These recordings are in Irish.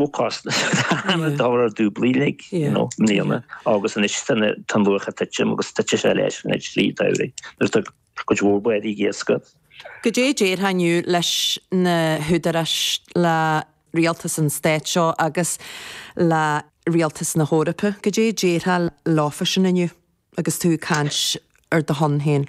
Ócáid cheana dá raibh dúbailte i mbliana agus anois tá an luach ag titim agus titfidh sé leis tríd an tsamhradh nuair atá cuid mhór bádaí ag iascaireacht. Goidé déarfá inniu leis na húdaráis, le rialtas an stáit seo agus le rialtas na hEorpa, goidé déarfá leo freisin inniu agus tú ag caint ar do shon féin?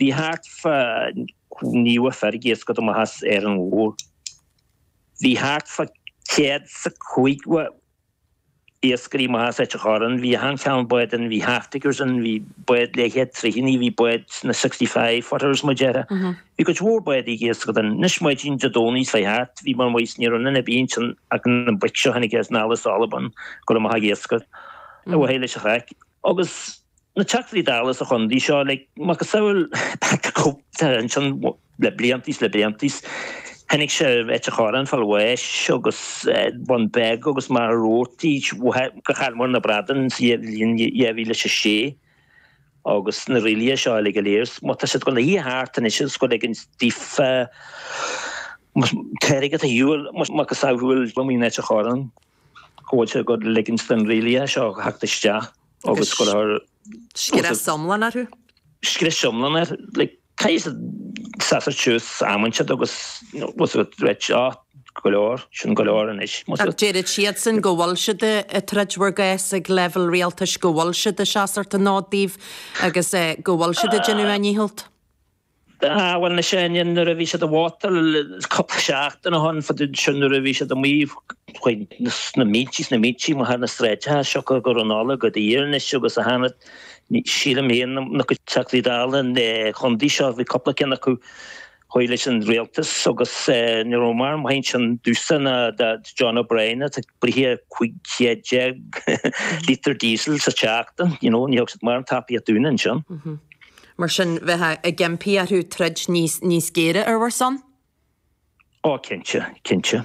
Bhí thart fa naocha fear ag iascaireacht amach as Árainn Mhór. Bhí thart fa céad is a caoga iascairí amach as Ailt an Chorráin. Bhí achan chineál báid ann. Bhí half-deckers ann. Bhí báid le céad troigh ann. Bhí báid na sixty five footers, mar a déarfá. Bhí cuid mhór báid ag iascaireacht ann. Anois maidín Dé Domhnaigh seo thart, bhí mé amuigh is, ní raibh aon duine ar bith ansin ach na boic seo a tháinig anall as Albain go raibh amuigh ag iascaireacht. Away leis an chraic. Agus na Teachtaí Dála sa chondae seo, like, macasamhail Cope ansin le blianta is le blianta is chonaic sé Ailt an Chorráin fá bhláth agus Bun Beag agus Machaire Rabhartaigh go chaill muid na bradáin sa bhliain 2006 agus na rialacha seo uilig go léir. Má tá siad ag gabháil a shuí thart anois is go ag an stífa Teirigh a dhiúil macasamhail go mí in Ailt an Chorráin. go bhfuil siad ag ligint do na rialacha seo theacht isteach agus go raibh scrios iomlán orthu. Scrios iomlán air, like cad a seasfaidh suas amanta siad agus was a threat á go leor sin go leor anois. Déarfadh siadsan go bhfuil siad ag troid bhur gcás ag leibhéal rialtais, go bhfuil siad ag seasamh an fhóid daoibh agus go bhfuil siad ag déanamh a ndícheall. Ah, bhuel, na Seoinín, nuair a bhí siad ag vótáil, cupla seachtain ó shoin, fadó ansin, nuair a bhí siad amuigh chuig na mílte is na mílte amuigh ar na sráideacha, siocair go raibh an ola go daor anois agus a thana, sílim fhéin, na cuid Teachtaí Dála an Chontae seo, bhí cupla cinn acu thaobh leis an Rialtas agus ní raibh mórán maith ansin dúinne ná John O'Brien atá ag bruith 1500 lítear diesel sa tseachtain, you know, ní thug siad mórán tacaíocht dúinn ansin. Mar sin, bheifeá ag impí orthu troid níos géire ar bhur son? Ó, cinnte, cinnte.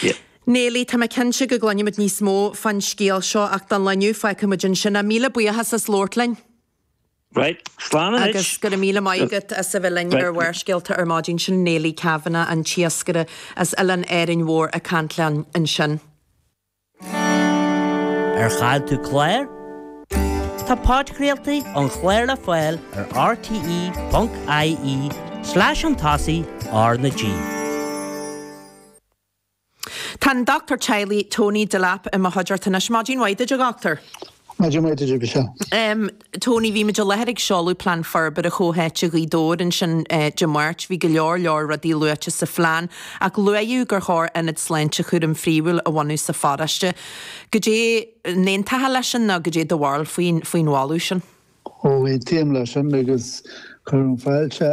Yeah. Neilí, Tá mé cinnte go gcluinfimid níos mó fán scéal seo ach don lá inniu, fágfaimid ansin é. Míle buíochas as labhairt linn. Right. Slán anois. Agus go raibh míle maith agat as a bheith linn ar Barrscéalta ar maidin sin Neilí Kavanagh an t-iascaire as Oileán Árainn Mhór ag caint linn ansin. Ar chaill tú clár? Tá podchraoltaí an chláir le fáil ar rte.ie slash chun tosaigh R na G. Tá an Dochtúir Teaghlaigh Tony Delap i mo chuideachta anois. Maidin mhaith duit, a Dhochtúir. Em, Tony, bhí muid i láthair ag seoladh Plean Forbartha Chomhtháite Ghaoth Dobhair ansin eh, Dé Máirt. Bhí go leor, leor rudaí luaite sa phlean, ach luaíodh gur chóir ionad sláinte chúraim phríomhúil a bhunú sa pharóiste. Go dé n-aontaíonn tú leis sin ná go dé do bharúil faoin, faoin mholadh sin? Ó aontaím leis sin agus cuirim fáilte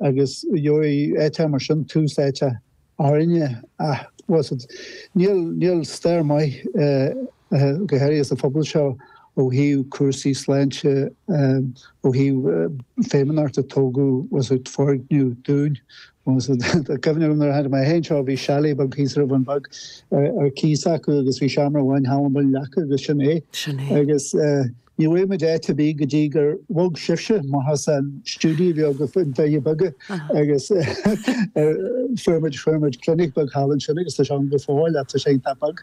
Agus gheobhaidh áit mar sin tús áite, tharla, tá a fhios agat, níl stair maith go háirithe sa phobal seo ó thaobh cúrsaí sláinte, ó thaobh feidhmeannachta, tógadh, tá a fhios agat, foirgnimh dúinn. Cuimhne agam nuair a tháinig mé fhéin seo bhí chalet beag thíos ar an Bhun Bheag ar cíos acu agus bhí seomra amháin i Rann na Feirste acu agus sin é. Sin é. Agus. Ní bhfuair muid áit ar bith go dtí gur bhog sibhse amach as an stiúideo bheag ar na Doirí Beaga agus fuair muid, fuair muid clinic beag thall ansin agus tá sé ann go fóill ach tá sé iontach beag.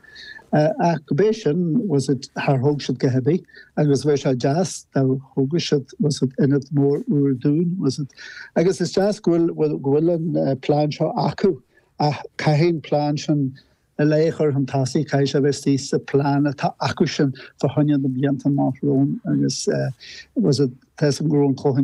Ach go bé sin, tá a fhios agat, char thóg siad a dhath ar bith agus bheadh sé deas dá dtógfadh siad, tá a fhios agat, ionad mór úr dúinn, tá a fhios agat. Agus is deas go bhfuil, go bhfuil an plean seo acu ach caithfidh an plean sin Na laochra fantasica is ea a bheas thíos sa plean atá acusan fá choinne na blianta amach romhainn agus was it Tess and Grown Cohen,